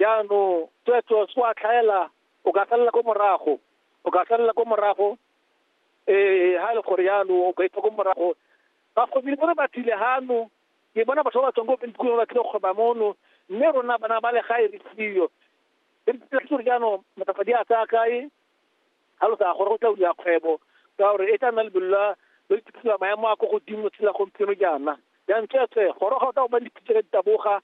Jaanong tsweetswe se wa tlhaela o ka salela ko morago, o ka salela ko morago ee ha e le gore yalo o ka itsa ko morago ba kgobile bone ba tlile gano ke bona batho ba ba tswang ko bentukong ba tlile go kgweba mono mme rona bana ba le gae re siyo re tlile gore jaanong matafadi a tsaya kae ga lo sa gore go tla uliwa kgwebo ka gore e tla nna lebelo la lo iphitlhela maemo a ko godimo tshela gompieno jaana jaanong tsweetswe goroga o tla go ba dipitse ka ditaboga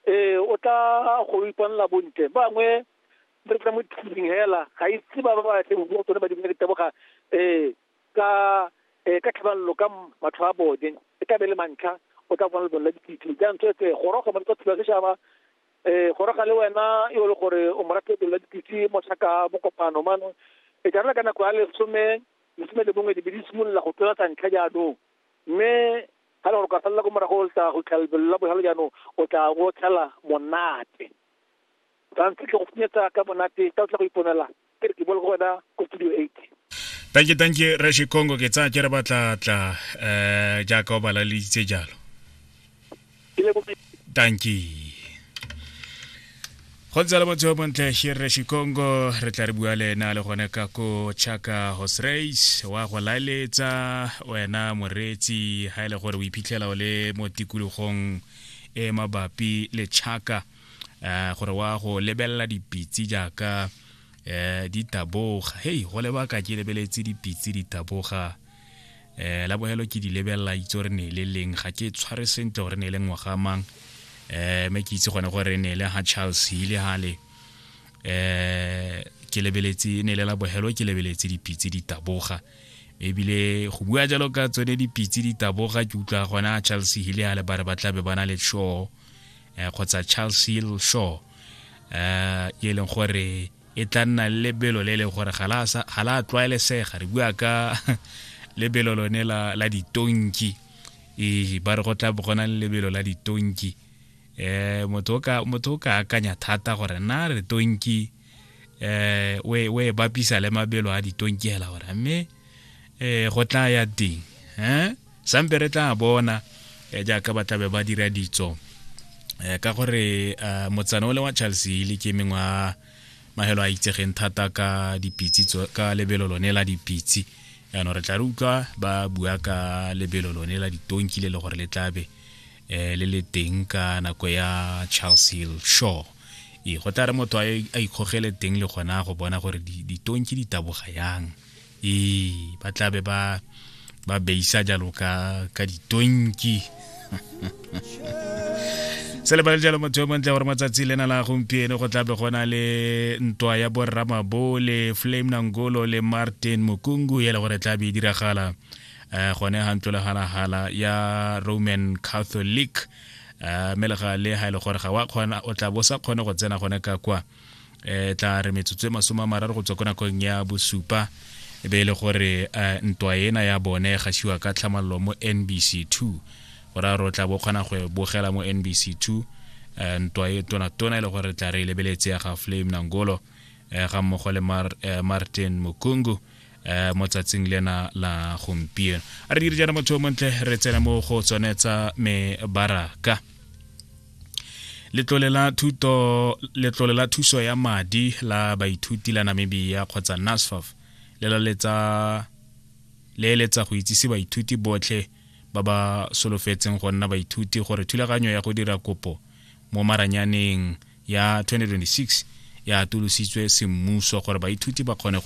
ee o tla go iponela bontle bangwe re tla mo tshitsing hela ga itse ba ba ba tle go bua tsone ba dibile ke teboga um ka um ka tlhabalolo ka matlho a bone e ka be le mantlha o tla bona lebone la dipitse jaanong tsetse gorogo mo tsa thula setšhaba um goroga le wena e le gore o morafe lebone la dipitse mo tlhaka bokopano mano e jarela ka nako ya lesome lesome le bongwe dibe di simolola go tlola tsa ntlha jaanong mme ga gore ka salela ko morago o tla go tlha lebelo la botlhale jaanong o tla o tlhela monate tshwanetse tle go funyetsa ka monate ka o tla go iponela ke re ke bole go wena ko studio eight thank you thank you rashi congo ke tsaya ke re batlatla um eh, jaaka o balaleditse jalo thank you go ntse le motho yo montle shirre shikongo re tla re bua le ena le gone ka ko chaka hosrace wa go laeletsa wena moreetsi ga e le gore o iphitlhela o le mo tikologong e mabapi le chaka um gore wa go lebelela dipitsi jaaka um ditaboga hei go lebaka ke lebeletse dipitsi ditaboga eh la bohelo ke di lebelela itse re ne le leng ga ke tshware sentle gore ne le ngwaga mang eh me ke itse gone gore ne le ha Charles Hile hale eh ke lebeletse ne le la bohelo ke lebeletse dipitse di taboga ebile go bua jalo ka tsone dipitse di taboga ke utlwa gona charles hill a le ba re ba tlabe ba na le shaw um kgotsa charles hill shaw um e leng gore e tla nna le lebelo le le gore ga la tlwaelesega re bua ka lebelo lone la, la ditonki ee ba re go tla gona le lebelo la ditonki um motho o ka akanya thata gore na re tonki um o e bapisa le mabelo a ditonki hela gore mme eh go tla ya ding eh sampe re tla bona eh, jaaka ba tlabe ba dira ditso eh, ka gore eh, motsana o le wa charles hile ke mengwe wa magelo a itsegeng thata ka dipitsi ka lebelo lone la dipitsi yaanong re tla re utlwa ba bua ka lebelo lone la ditonki le le gore le tlabe eh, le le teng ka nako ya charles hill shore e go tla re motho a ikgogele teng le gona go bona gore ditonki di taboga yang ee ba tlabe ba ba beisa jalo ka ka ditonki se lebale jalo motho yo montle gore matsatsi lena la gompieno go tlabe go na le ntwa ya borramabo le flame nangolo le martin mokungu e le gore tlabe e diragala um gone ga ntlo legalagala ya roman catholic um mme le gale ga e le gore ga wa kgona o tla bo sa kgone go tsena gone ka kwa e tla re metsotso e masome a mararo go tswa ko nakong ya bosupa e be e le gore eh, ntwa ena ya bone e gasiwa ka tlhamalelo mo nbc two go raya gore o tla bo kgona go e bogela mo nbc two eh, ntwa e tonatona e le gore re tla re e lebeletse ya ga flame nangolo eh, ga mmogo le Mar- eh, martin mokungu eh mo tsatsing lena la gompieno a re dire jana motho montle re tsena mo go tsone tsa mebaraka letlole la thuto letlole la thuso ya madi la baithuti la Namibia kgotsa NASFAF le la letsa le eletsa go itsise baithuti botlhe ba ba solofetseng go nna baithuti gore thulaganyo ya go dira kopo mo maranyaneng ya 2026 ya atolositswe semmuso gore baithuti ba kgone gore